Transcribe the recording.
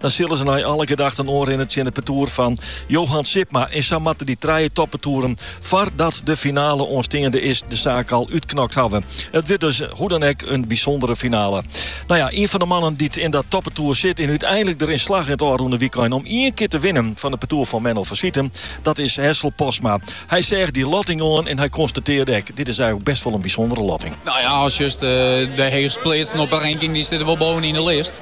Dan sille se nei alle gedachten oanrinne tsjin it partoer fan Johan Sipma. En sa moatte dy trije toppartoeren foardat de finale oansteande is de saak al útknokt hawwe. It wurdt dus hoe dan ek in bysûndere finale. No ja, ien fan de mannen dy't yn dat toppartoer sit en úteinlik deryn slagge it ôfrûne wykein om ien kear te winnen fan it partoer fan Menno van Swieten, dat is Hessel Postma. Hy seach dy lotting oan en hy konstatearre ek, dit is eigenlik best wol in bysûndere lotting. No ja, as just de heechstpleatsten op 'e ranking, dy sitte wol bovenyn de list.